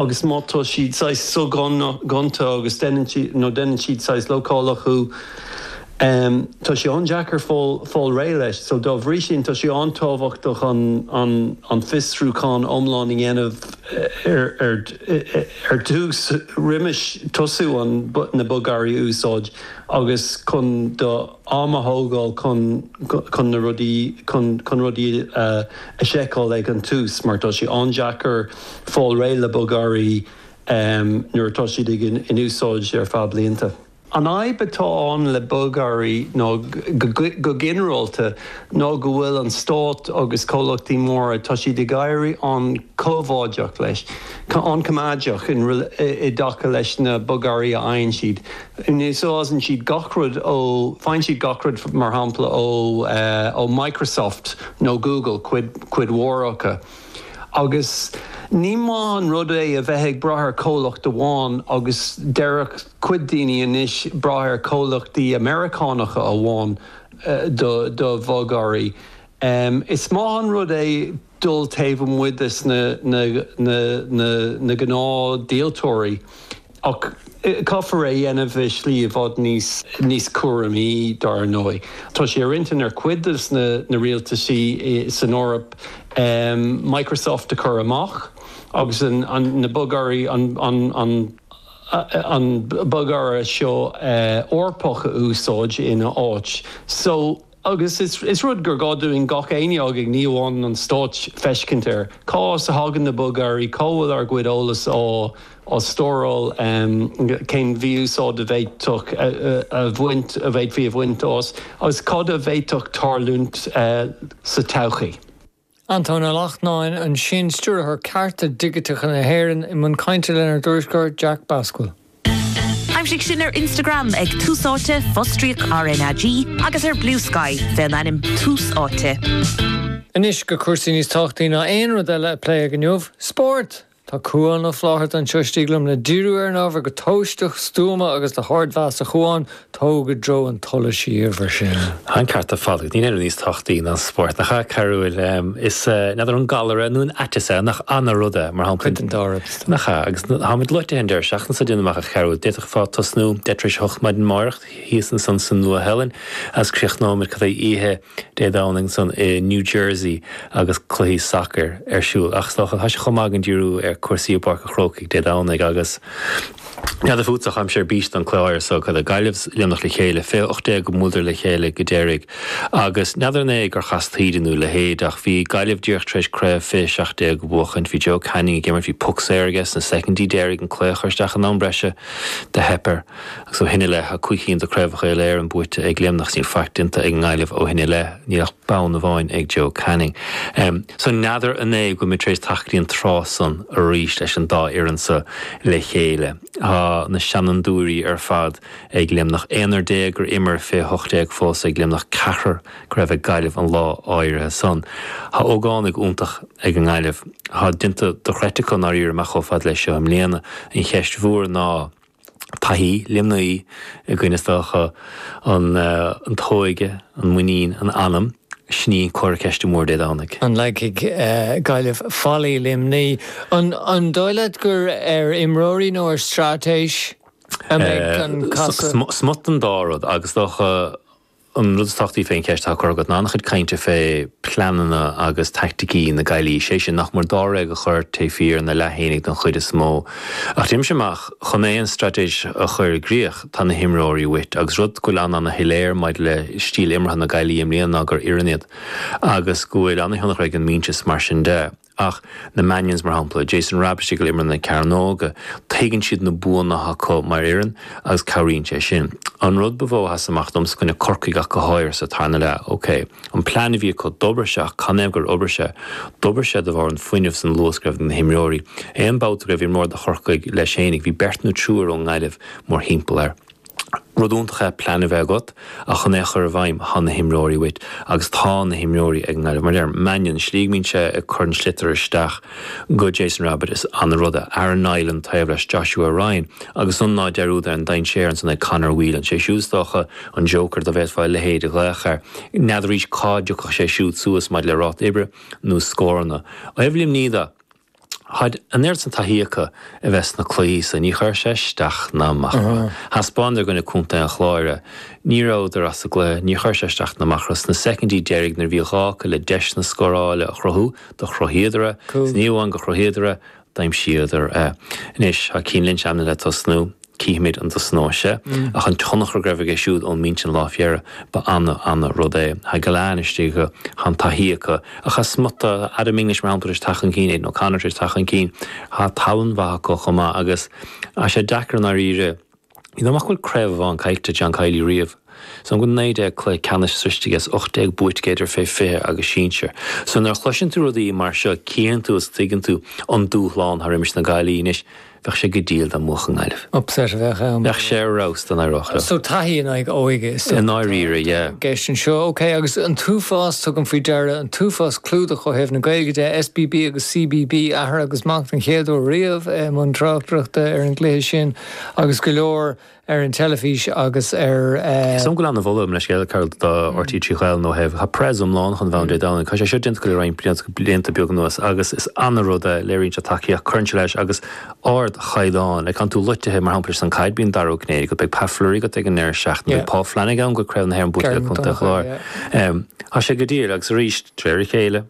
Agus má tá siad saghas so-ghonta agus deineann siad, nó deineann siad saghas lócáilte chuige, em, tá sé an-deacair fáil, fáil réidh leis. So dá bhrí sin, tá sé an-tábhachtach an, an, an fiosrúchán iomlán a dhéanamh ar, ar, ar dtús, roimh tosú an, na bogearraí a úsáid agus chun do am a thógáil chun, chun na rudaí, chun, chun rudaí a, a sheiceáil ag an tús mar tá sé an-deacair. fáil réidh le bogearraí nuair atá siad in úsáid ar feadh blianta. An fhadhb atá ann le bogearraí ná go ginearálta ná go bhfuil an stát agus comhlachtaí móra, tá siad ag éirí an-choimeádach leis, an-choimeádeach i dtaca leis na bogearraí a fhaigheann siad. Úsáideann siad gach rud ó, faigheann siad gach rud, mar shampla, ó Microsoft nó Google, cuid mhór acu. Agus ní maith an rud é a bheith ag brath ar chomhlacht amháin agus déarfadh cuid daoine anois brath ar chomhlachtaí Meiriceánacha amháin do do bhogearraí. Is maith an rud é dul taobh amuigh de na gnáthdhíoltóirí. Ach caithfear é a dhéanamh i slí i bhfad níos, níos cúramaí, dar ndóigh. Tá sé ar intinn ar chuid de na rialtaisí san Eoraip Microsoft a chur amach agus na bogearraí, an bogearra seo Eorpach a úsáid ina áit. Agus is rud gur gá dúinn gach éinne againn, ní amháin an Stát, féachaint air. Cá as a thagann na bogearraí, cá bhfuil ár gcuid eolas á stóráil, cén mí-úsáid a bhféadfadh a bhaint, a bhféadfaí a bhaint as, agus cad a bhféadfadh tarlúint sa todhchaí. Antóin Ó Lachtnáin, ansin Stiúrthóir Cearta Digiteacha na hÉireann, i mbun cainte lenár dtuairisceoir Jack Bascail. Aimsigh sinn ar Instagram ag Tús Áite, fostríoc RnaG, agus ar Bluesky, fé an ainm Tús Áite. Anois go cúrsaí níos tábhachtaí ná aon rud eile a pléadh inniu, spórt! Tá Cuan Ó Flátharta anseo istigh liom le díriú ar an ábhar go tomhaisteach, stuama agus le hardmheas. A Chuain, tóg i dtreo an tsolais sinn mar sin. An ceart ar fad agat. Níl aon rud níos tábhachtaí ná an spórt, nach ea, a Chearbhaill? Is, n'fheadar an galar é nó an aiteas é, nach ait an rud é, mar shampla. Cuid den dá rud, is dóigh. Nach ea? Agus táimid loite ar an deireadh seachtaine seo, déan amach, a Chearbhaill. D'fhéadfá tosnú, deich tar éis a hocht maidin amárach, thíos ansan sa Nua-Shéalainn, agus críochnóimid, cad é, oíche. Dé Domhnaigh san i New Jersey agus cluichí sacair ar siúl. Ach is dócha, tá sé chomh maith againn díriú ar cúrsaí i bPáirc an Chrócaigh Dé Domhnaigh agus. N'fheadar fút ach táimse ar bís don cluiche so. Caithfidh Gaillimh Luimneach le chéile. Fiche ocht déag ó bhuaileadar le chéile go deiridh. Agus n'fheadar an é gur chas taoide nú a leithéid, ach bhí Gaillimh díreach tar éis craobh fiche seacht déag a bhuachaint. Bhí Joe Canning ag imirt, bhí puc saor aige sna soicindí deiridh, an cluiche a chur isteach in am breise. Do theip air. Agus ó shin i leith, tá cúig cinn de Chraobhacha Uile-Éireann buaite ag Luimneach. Níl faic déanta ag an nGaillimh ó shin i leith, níl ach bonn amháin ag Joe Canning. So n'fheadar an é go bhfuil muid tar éis teacht go dtí an tráth san arís leis an dá fhoireann seo le chéile. Tá na seanfhondúirí ar fad ag Luimneach. Aonar déag gur imir fiche hocht déag fós ag Luimneach, ceathrar go raibh ag Gaillimh an lá áirithe san. Tá ógánaigh iontach ag an nGaillimh. Tá déanta dochreidte acu i ndáiríribh chomh fada leis seo i mbliana. An cheist mhór ná. taithí, Luimnigh i gcoinne is dócha an t-óige, an muinín, an anam, sin é comhartha ceiste mór Dé Domhnaigh. An leagfaidh Gaillimh fallaí Luimnigh? An dóigh leat gur ar imreoirí nó ar straitéis a mbeidh an casadh? Smut den dá rud agus is dócha An rud is tábhachtaí fén cheist atá curtha agat ná an-chuid cainte fé pleananna agus taicticí na Gaillimhe, sé sin, nach mór dáréag a chur taobh thiar ina leath fhéinig don chuid is mó. Ach déanaimse amach, chun aon straitéis a chur i gcríoch, tá na himreoirí uait, agus rud go bhfuil an-an-shoiléir maidir le stíl imeartha na Gaillimhe i mbliana ná gur fhireann iad, agus go bhfuil an-thionchar ag an mínteas, mar sin de. Ach na Mannions, mar shampla, Jason Rabbitte istigh ar imeall na cearnóige, tuigeann siad na buanna atá acu mar fhoireann agus cabhraíonn sé sin. An rud ba mhó a sheas amach dom, is i gcoinne Corcaigh ach go háirithe sa tarna leath, ok, an plean a bhí acu, d'obair sé ach canathaobh gur obair sé? D'obair sé de bharr an fuinneamh 's an luas go raibh ag na himreoirí. Aon babhta go raibh imreoir do Chorcaigh leis fhéinig, bhí beirt nó triúr ón nGaillimh mórthimpeall air. Rud iontach é plean a bheith agat ach chun é a chur i bhfeidhm tá na himreoirí uait agus tá na himreoirí ag an nGaillimh. Mar adeirim Mannion, slí go mbíonn sé ag cur an sliotair isteach go Jason Rabbitte is ana ruda. Aaron Niland taobh leis Joshua Ryan agus san ná deir údar an dainséir ansan ag Conor Whelan. Sé siúd is dócha an joker do bhféadfá a leithéid a ghlaoch air. N'fheadaraís cá dtiocfadh sé siúd suas maidir le ráta oibre nó scóranna. Ó thaobh Luimnigh de. Tá an oiread san taithí acu a bheith sna cluichí so ní chuir sé isteach ná amach orthu. Thaispeánadar i gcoinne Chontae an Chláir. Ní rabhadar as an gcluiche. Ní chuir sé isteach ná amach orthu. Sna soicindí deiridh nuair a bhí gá acu le deiseanna scórála a chruthú, do chruthaíodar é. Is ní amháin gur chruthaíodar é, d'aimsíodar é. Anois, tá Cian Lynch ainmnithe le tosnú. Cífimid an dtosnóidh sé, ach an tionchar go raibh aige siúd ón mbinse an lá fé dheireadh, ba ana, ana rud é. Tá an-depth acu, tá an taithí acu, ach tá smut de, Adam English, mar shampla, tar éis teacht chun cinn, Aidan O'Connor tar éis teacht chun cinn, tá tallann mhaith acu chomh maith agus tá sé deacair i ndáiríre, is dóigh liom nach bhfuil craobh amháin caillte ag John Kiely riamh, so an bhfuil naoi déag cluiche ceannais sroichte aige is ocht déag buaite aige idir fé 20 agus sinsir. So nuair a chloiseann tú rudaí mar seo cífeann tú is tuigeann tú an dúshlán atá roimis na Gaillmhigh anois. Bheadh sé go diail dá mbuafadh Gaillimh. Upset a bheadh ann. Bheadh sé ar fheabhas don gcraobhchomórtas. So taithí in aghaidh óige is dócha atá i ndáiríre, yeah. i gceist anseo. Ok, agus an t-uafás, tugaim faoi deara, an t-uafás clúdach ó thaobh na Gaeilge de, SBB agus CBB, athair agus mac don chéad uair riamh i mbun tráchtaireachta ar an gcluiche sin agus go leor, ar an teilifís agus ar. Is dóigh liom go bhfuil ana-mholadh tuillte ag Cathal do RTÉ Raidió na Gaeltachta. Tá preas iomlán chun bheith ann Dé Domhnaigh. Tá sé seo déanta acu le roinnt blianta beaga anuas, agus is an-rud é léiríonn siad tacaíocht, cuireann sé leis agus ardchaighdeán. Aithníonn tú leithéidí, mar shampla, leis an gcaid, bíonn Dara Ó Cinnéide agat, beidh Pat Fleury agat ag an ndeireadh seachtaine, beidh Paul Flanagan agat, craobh na hÉireann buaite le contae Chláir. Tá sé go diail, agus arís, de réir a chéile.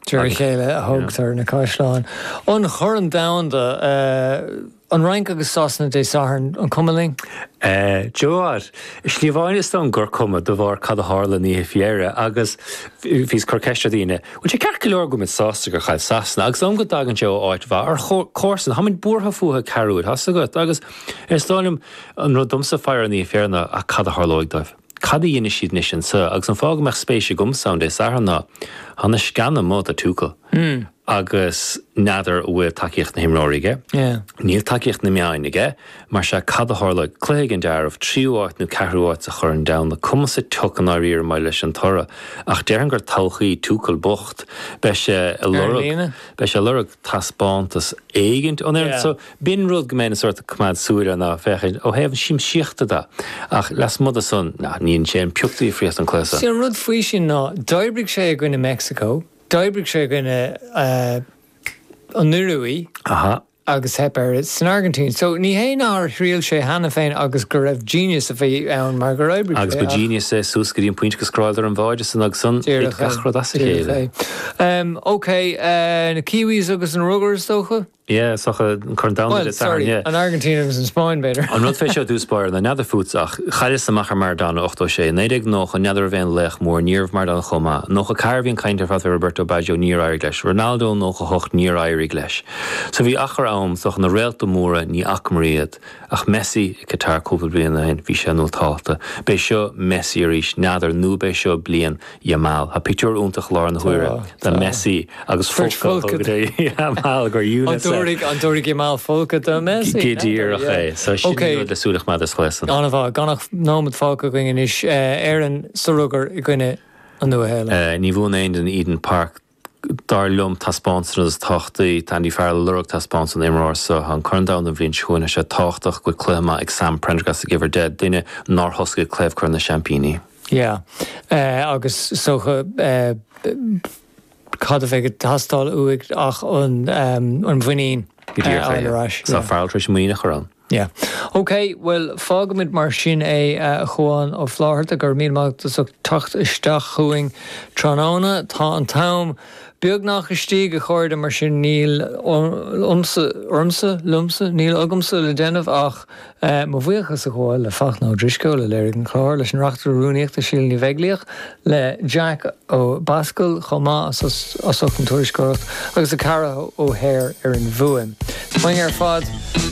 De réir a chéile a thógtar na caisleáin. An Corn Domhanda, An Fhrainc agus Sasana Dé Sathairn, an cuma linn? D'you know what, is ní amháin is dóigh liom gur cuma, de bharr cad a tharla an oíche fé dheireadh, agus bhíos ag cur ceist ar dhaoine, bhfuil sé ceart go leor go bhfuil muid sásta gur chaill Sasana, agus is dóigh liom go dtagann sé ó áit mhaith, ár gcomharsain, táimid buartha fúthu, cairdiúil, tá's agat, agus is dóigh liom, an rud domsa faire an oíche fé dheireadh ná, ach cad a tharlóidh dóibh? Cad a dhéanfaidh siad anois anseo? Agus an fáth go mbeadh spéis agamsa ann Dé Sathairn ná tá na sceana amuigh do Tuchel agus n'fheadar an bhfuil tacaíocht na n-imreoirí aige. Níl tacaíocht na meáin aige. Mar sea, cad a tharlóidh? Cluiche ag an deireadh, tríú áit nó ceathrú áit sa Chorn Domhanda. Cuma sa tsioc i ndáiríre maidir leis an toradh. Ach déarfainn gur todhchaí Tuchel bocht. Beidh sé ag lorg taispeántas éigint ón bhfoireann. B'in rud go mbeinn sórt ag coimeád súil air ná féachaint ó thaobh na siamsaíochta de, ach lasmuigh de san, nah, ní dhéanann sé aon phioc difríochta an cluiche san. Sea, an rud faoi sin ná, d'oibrigh sé i gcoinne Meicsiceo, d'oibrigh sé i gcoinne an Iorua agus theip air san Airgintín. So, ní hé nár thriail sé cheana féin agus gurbh genius a bhí ann mar gur oibrigh sé, ach. Agus ba genius é suas go dtí an pointe gur scóráladar an báide san agus ansan, thit gach rud as a chéile. Díreach é. Díreach é. Em, OK, eh, na Kiwis agus an Rugar, is dócha? Yeah, is dócha, an Corn Domhanda Bhuel, Dé Sathairn, sorry, yeah. an Airgintín agus an Spáinn, b'fhéidir. An rud fé seo, i dtús báire, ná n'fheadar fútsa ach chailleas amach ar Maradona 86. I 1990, n'fheadar an raibh an laoch mór, ní raibh Maradona chomh maith. 94, bhí an chaint ar fad fé Roberto Baggio, níor éirigh leis. Ronaldo 98, níor éirigh leis. So bhí achar ann, is dócha, na réalta móra, ní fhacamar iad. Ach Messi i Qatar cúpla bliain ó shin, bhí sé tábhachtach. B'é seo Messi arís, n'fheadar nó b'é seo bliain Yamal. Tá pictiúr iontach i láthair na Tá, huaire de tá. Messi agus Beirt folcadh folctha aige de do. Yamal gur An unicef. dtabharfaidh, an dtabharfaidh Yamal folcadh do Messi? Go N'fheadar, díreach é. So yeah. sin an rud Okay. le súil a choimeád ar an scéal san. An-mhaith, gan ach nóiméad fágtha againn anois, eh, Éirinn sa rugar i gcoinne an Nua-Shéalainn. Eh, Ní bhuann aon duine Eden Park. Dar liom, taispeántas is tábhachtaí. Tá Andy Farrell ag lorg taispeántas ón imreoir seo. Tá an Corn Domhanda an bhliain seo chugainn agus sé tábhachtach go bhfuil cluiche maith ag Sam Prendergast ag uimhir 10, duine nár thosaigh i gcraobh Chorn na Seaimpíní. Yeah agus is dócha cad a bheidh ag teastáil uaidh ach an mhuinín a fháil ar ais. Go díreach é. Tá Farrell tar éis muinín a chur ann. Yeah. OK, bhuel, fágaimid mar sin é, a Chuán Ó Flátharta. Go raibh míle maith agat as ucht teacht isteach chugainn tráthnóna. Tá an t-am beagnach istigh, a chairde, mar sin níl ionamsa, ormsa, liomsa, níl agamsa le déanamh ach mo bhuíochas a ghabháil le Fachtna Ó Drisceoil, a léirigh an clár, leis an Reachtaire Rúnaíochta, Síle Ní Bheaglaoich, le Jack Ó Bascaill chomh maith as ucht an tuairisceoireacht, agus le Cara O'Hare ar an bhfuaim. Tamain ar fad!